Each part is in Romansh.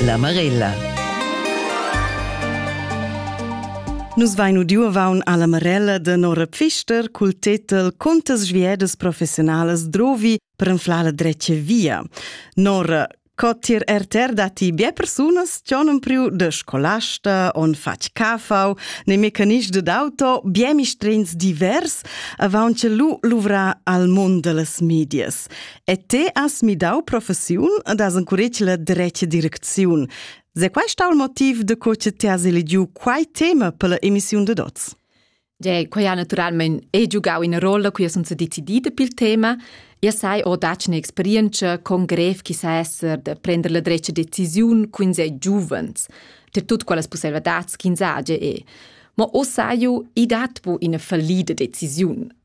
La Marella. Nus vain udiu avaun alla Marella de Nora Pfister cul tetel Contas sviedas professionalas drovi per enflar la drecia via. Nora, co tir RTR dati bie persunas cionum priu de scolasta on fac cafau, ne mecanist de d'auto, bie mistrins divers, avaun ce lu luvra al mund de las medias. E te has midau professiun ed has encuretg la dretga direcziun. Se quai sta il motiv de co che ti has eligiu quai tema per la emissiun de Dots? De, quai ha naturalment è giugau ina rolla cui sun se decidida pel tema. Ja sai ho dac un'esperienza con grev chi sa esser de prender la dretga decisiun cun se giuvens, ter tut quelles possibilidades ch'ins age e. Ma o saiu, i dat bu ina fallida decisiun.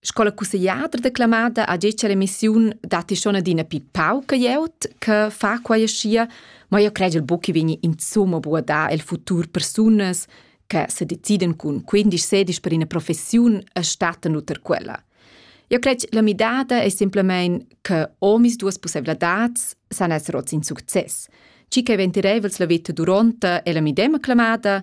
Sco la cussegliadra declamada ha detg all'emissiun datti schon adina pi pauca glieud che fa quai aschia, ma io credel buc che vegni insomma bu a dar el futur persunas che se deciden cun 15-16 per ina professiun e stattan uter quella. Io cred la midada è semplamein che omis duas possibilitads san esser oz in success. Ci che ventirevels la vita duronta e la midema clamada,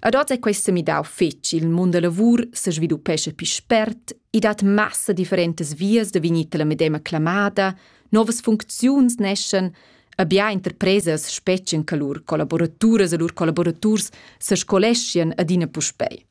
Ad oz è quest semidau fetg, il mund da lavur se sviluppesce più spert, i dat massa differentas vias da vegnir la medema clamada, novas funcziuns neschen, abia interpresas spetschen che lur collaboraturas e lur collaboraturs se scoleschien adina puspei.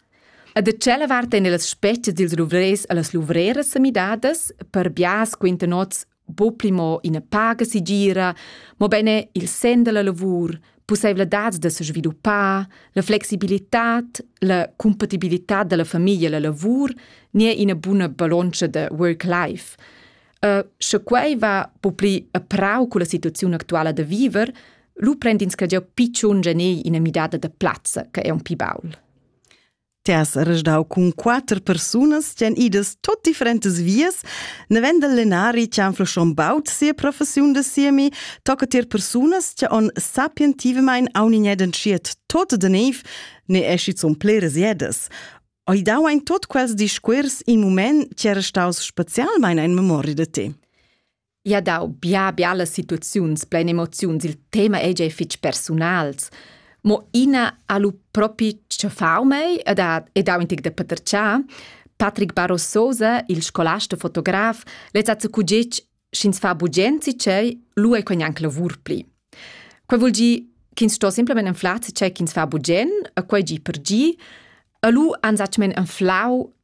E da tschella vart en las spetschas dils luvrers e las luvreras semidadas, per bias quinta nots bo pli mo ina paga sigira, mobeine il sen della lavur, pusseivladads da sviluppar, la flexibilitad, la compatibilità della famiglia e la lavur ni è ina buna ballontscha da work-life. Uh, sche quei va po pli a prau con la situazione actuala da viver, lu prend ins che già picciun genei ina midada da plazza, che è un pi baul. Ti has resdau cun quater persunas ch'en idas tot differentas vias, nevend el lenari che han flschon baut sia professiun da siemi, tocca tier persunas che on sapientivamein aunignedan schiet tot de neiv, ne esci zun pleres jedas. Oi dau ein tot quels discuors in mument che era staus specialmein ein memoria de te. ia dau bia bialas situaziuns plein emoziuns, il tema ei gia fitg persunals, mo ina ha lu propi tschaffau mei ed ha, ed ha un tic da paterciar. Patrick Barrososa, il scolasta fotograf, lez ha cugic sch'ins fa bugenzi cei, lu ei quei anc lavur pli. Quei vul gi ch'ins sto simplemente anflar ce ch'ins fa bugen, e quei gi per gi, e lu han zatgmen anflau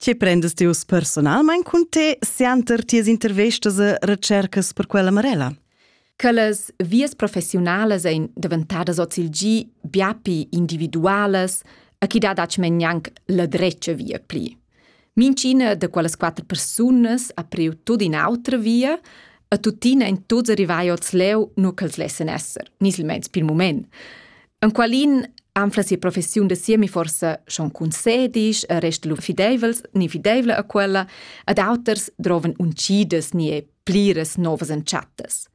Tge prendas ti uss personalmain cun te sianter tias intervistas e recercas per quella Marella? che las vias professiunalas ein daventadas ozilgi biapi individualas e chi dat aci men gnanc la drecia via pli. Mincina de quellas quatter persunas ha priu tut in autra via e tuttina in tuts arrivai oz leu nu ch'els lessen esser, ni silmeins pil moment. Enqualin anfla sia professiun da siemi forsa schon concedis, resta lu fideivels ni fideivla a quella, ad auters droven uncidas ni e pliras novas entschattas.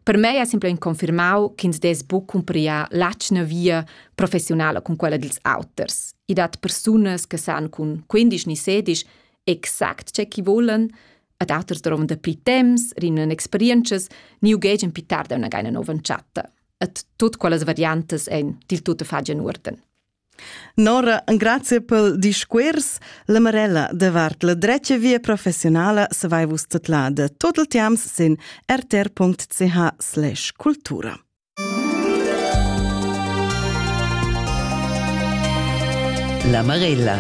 Per mei ha simpel confermau ch'ins des buc cumprià l'atschna via professionala con quella dils auters. I dat persunas che san cun 15 ni 16 exact ce chi volen, ad auters droven da pli temps, rinnen experientschas, ni ugegen pitar da una geina nova entschata. et tut quellas variantas ein dil tutto fagian uorden. Nora, grazie pel discuors. La Marella davart la drecha via professionala se vai vus tetlada. Tot il tiams sin rtr.ch/cultura. La Marella